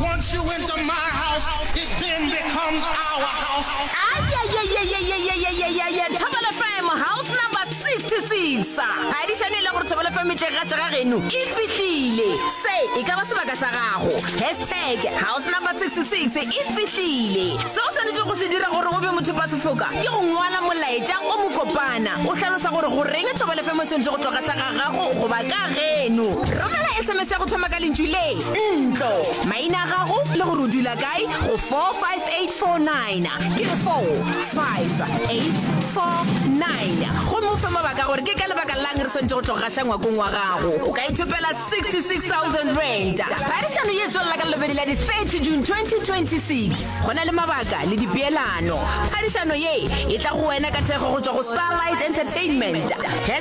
Once you enter my house, it then becomes our house. Ayayayayayayayayayaya Thobel FM house number 66 ga di šane e le gore Thobel FM e tle ga šega geno e fihlile se e ka ba sebaka sa gago hashtag house number 66 e fihlile se o swanetše go se dira gore o be motho ba sefoka ke go ngwala molaetša o mokopana o hlalosa gore goreng Thobel FM e swanetše go tloga šega gago goba ka geno. Romela SMS ya go thoma ka lentšu le, ntlo, maina a gago le gore o dula kae go 45849. Ke re 45849 gomme o fe mabaka gore ke ka lebaka lang re swanetše go tlo gaša ngwakong wa gago. O ka ithopela 66000 rand. Phadišano ye tswelela ka lobedi la di-30 june 2026 go na le mabaka le dipeelano phadišano ye e tla go wena ka thekgo go tšwa go starlight entertainment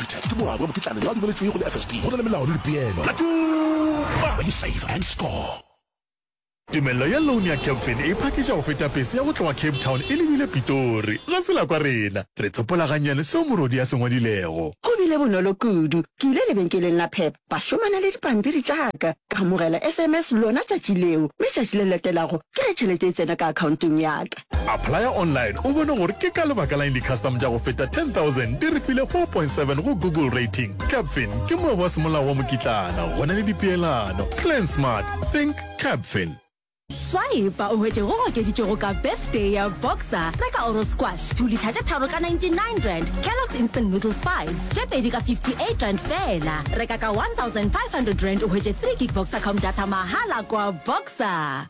Peter ke morwa wa mokitlana yo a dumeletšwego le FSB. Go na le melao le dipeelo. Ka tuma! When you save and score. Tumello ya loan ya Capfin e phakiša go feta pese ya go tloga Cape Town e lebile Pitori. Ga se la kwa rena. Re tsopola gannyane seo morwodi a se ngwadilego. Go bile bonolo kudu. Ke ile lebenkeleng la Pep ba šomana le dipampiri tša ka, ka amogela sms lona tšatši leo, mme tšatši le latelago ke ge tšhelete e tsena ka akhaontong ya ka. Applya online o bone gore ke ka lebaka la'ng di-custom tša go feta 10,000 di re file 4.7 go Google Rating. Capfin ke moebo wa semolao wa mokitlana, go na le dipeelano. Plan smart, think Capfin. Swipe o hwetše go okeditšwego ka Birthday ya Boxer, reka Oro Squash, 2 litha tše tharo ka 99 rand, Kellogg's Instant Noodles 5s, tše pedi ka 58 rand feela. Reka ka 1500 rand o hwetše 3 gig Boxer Com data mahala kwa Boxer.